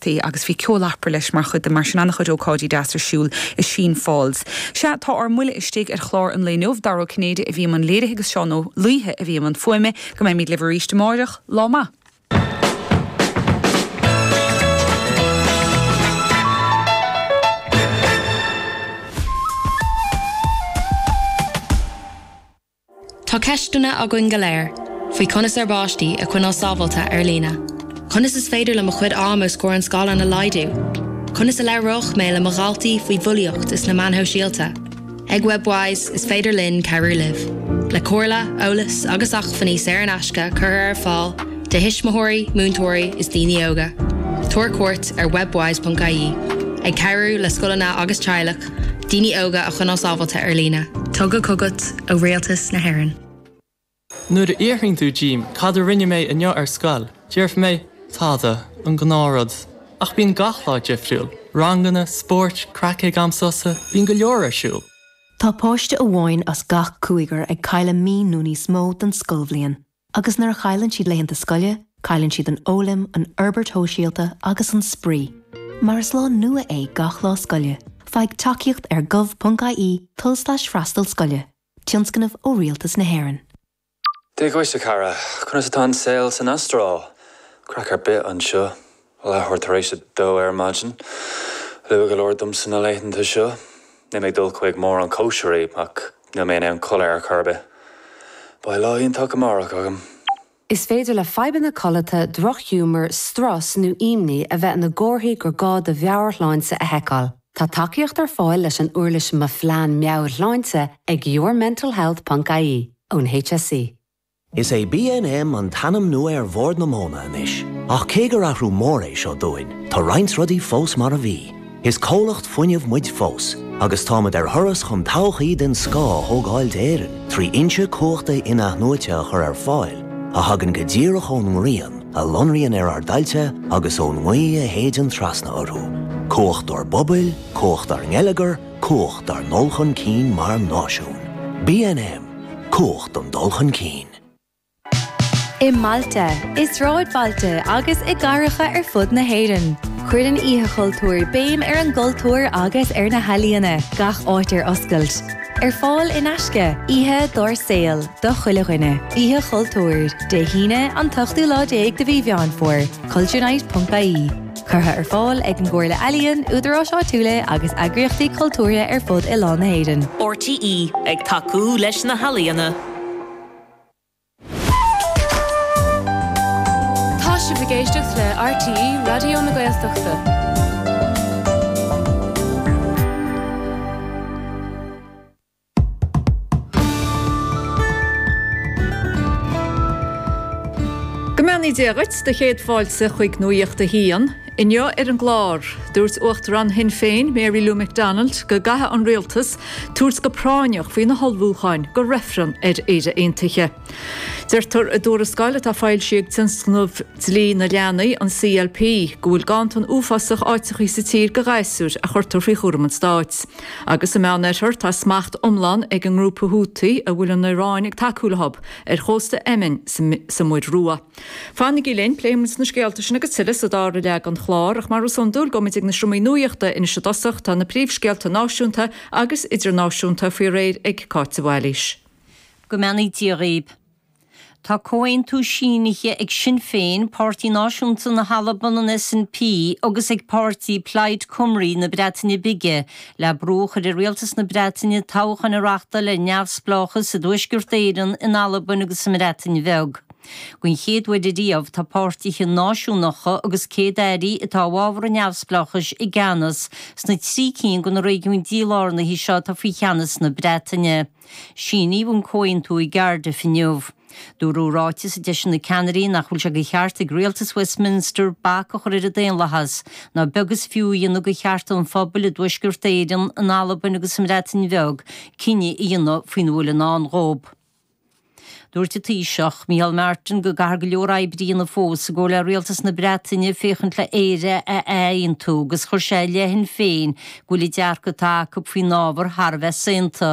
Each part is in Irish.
tae agus bhí ceol Opera leis mar chuid de mar sin an-chuid ócáidí deas ar siúl i Sheen Falls. Sea, tá ár mbuille istigh ar chlár an lae inniu. Dara Ó Cinnéide a bhí i mbun léirithe agus Seán Ó Laoithe a bhí i mbun fuaime. Go mbeimid libh arís amáireach. Lá maith. Tá ceisteanna againn go léir faoi conas ár bpáistí a choinneáil sábháilte ar líne. Conas is féidir le mo chuid ama os comhair an scáileáin a laghdú? Conas a labhróidh mé le mo dhaltaí faoi bhulaíocht is na meáin shóisialta? Ag Webwise, is féidir linn cabhrú libh, le comhairle, eolas agus acmhainní saor in aisce curtha ar fáil do thuismitheoirí, múinteoirí is daoine óga. Tabhair cuairt ar webwise.ie, ag cabhrú le scoileanna agus teaghlaigh. Daoine óga a choinneáil sábháilte ar líne. Tugtha chugat ó Rialtas na hÉireann. Nuair a fhiafraíonn tú díom cad a rinne mé inniu ar scoil, déarfaidh mé, tada, an gnáthrud. Ach bíonn gach lá difriúil, ranganna, spóirt, craic ag am sosa, bíonn go leor ar siúl. Tá páiste amháin as gach cúigear ag cailleadh mí nó níos mó den scoilbhliain. Agus nuair a chailleann siad laethanta scoile, cailleann siad an fhoghlaim, an fhorbairt shóisialta agus an spraoi. Mar is lá nua é gach lá scoile. Faigh tacaíocht ar gov.ie, tulslais freastal scoile, tionscnamh ó Rialtas na hÉireann. Hé Eoghain, a chara! Conas atá an saol san Astráil? Craic ar bith anseo. Leathuair tar éis a dó ar maidin. Luath go leor domsa na laethanta seo. Níl mé ag dul chuig mórán cóisirí, ach níl mé in ann codladh ar chor ar bith. Beidh lá iontach amárach agam! Is féidir le fadhbanna codlata, drochghiúmar, strus nó imní a bheith ina gcomharthaí gur gá do mheabhairshláinte a sheiceáil. Tá tacaíocht ar fáil leis an uirlis Mo Phlean Meabhairshláinte ag yourmentalhealth.ie ón HSE. Is é BNM an t-ainm nua ar Bhord na Móna anois, ach cé gur athrú mór é seo dúinn, tá roinnt rudaí fós mar a bhí. Is comhlacht fuinnimh muid fós, agus táimid ar thuras chun todhchaí den scoth a thógáil d'Éirinn trí fhoinsí cumhachta in-athnuaite a chur ar fáil a thagann go díreach ón ngrian, a lonraíonn ar ár dtailte agus ón ngaoth a shéideann trasna orthu. Cumhacht ár bpobail, cumhacht ár ngeilleagar, Cumhacht ár ndul chun cinn mar náisiún. BNM, Cumhacht an dul chun cinn. I mbailte, i sráidbhailte agus i gcathracha ar fud na hÉireann, cuireann Oíche Chultúir béim ar an gcultúr agus ar na healaíona, gach áit ar oscailt. Ar fáil in aisce, oíche dár saol do chuile dhuine. Oíche Chultúir, Dé hAoine, an t-ochtú lá déag de mhí Mheán Fómhair, culturenight.ie. Curtha ar fáil ag an gComhairle Ealaíon, údaráis áitiúla agus eagraíochtaí cultúrtha ar fud oileán na hÉireann. RTÉ ag tacú leis na healaíona. Tá sibh ag éisteacht le RTÉ Raidió na Gaeltachta. Go mbeannaí Dia dhuit, do chéad fáilte chuig Nuacht a hAon. Inniu ar an gclár, dúirt Uachtarán Shinn Féin Mary Lou McDonald go gcaithfeadh an Rialtas tabhairt go práinneach faoi na hullmhúcháin do reifreann ar Éire Aontaithe. Deirtear i dtuarascáil atá foilsithe ag Tionscnamh Dlí na Leanaí, an CLP, go bhfuil ganntan uafásach áiteachaí sa tír do ghasúir a chuirtear faoi chúram an stáit. Agus sa Meánoirthear tá smacht iomlán ag an ngrúpa Houthi a bhfuil an Iaráin ag tacú leo, ar chósta Éimin, sa Muir Rua. Fanaigí linn, pléifidh muid na scéalta sin agus tuilleadh sa dara leath den chlár, ach mar is iondúil gabhaimid ag na seomraí nuaíochta anois i dtosach, tá na príomhscéalta náisiúnta agus idirnáisiúnta faoi réir ag Cáit de Bhailís. Go mbeannaí Dia dhaoib. Tá comhaontú sínithe ag Sinn Féin, Páirtí Náisiúnta na hAlban, an SNP, agus ag páirtí Plaid Cymru na Breataine Bige le brú a chur ar Rialtas na Breataine toghcháin a reachtáil ar neamhspleáchas i dTuaisceart Éireann, in Albain agus sa mBreatain Bheag. Don chéad uair ariamh tá páirtithe náisiúnacha agus céad-airí atá i bhfabhar an neamhspleáchais i gceannas sna trí cinn de na réigiúin dílárnaithe seo atá faoi cheannas na Breataine. Síníodh an comhaontú i gCardiff inniu. Dúradh i ráiteas a d'eisigh na ceannairí nach bhfuil sé de cheart ag rialtas Westminster bac a chur ar an daonlathas, ná beag is fiú a dhéanamh de chearta an phobail i dTuaisceart Éireann, in Albain agus sa mBreatain Bheag cinneadh a dhéanamh faoina bhfuil i ndán dhóibh. Dúirt an Taoiseach, Micheál Martin go gcaithfear go leor oibre a dhéanamh fós, i gcomhar le Rialtas na Breataine, féachaint le Éire a ath-aontú agus chuir sé i leith Shinn Féin go bhfuil an dearcadh atá acu faoin ábhar thar a bheith saonta.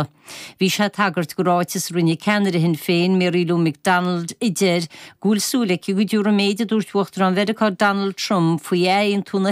Bhí sé ag tagairt do ráiteas a rinne ceannaire Shinn Féin, Mary Lou McDonald, a deir go bhfuil súil aici go dtiúrfaidh an méid a dúirt Uachtarán Mheiriceá Donald Trump faoi ath-aontú na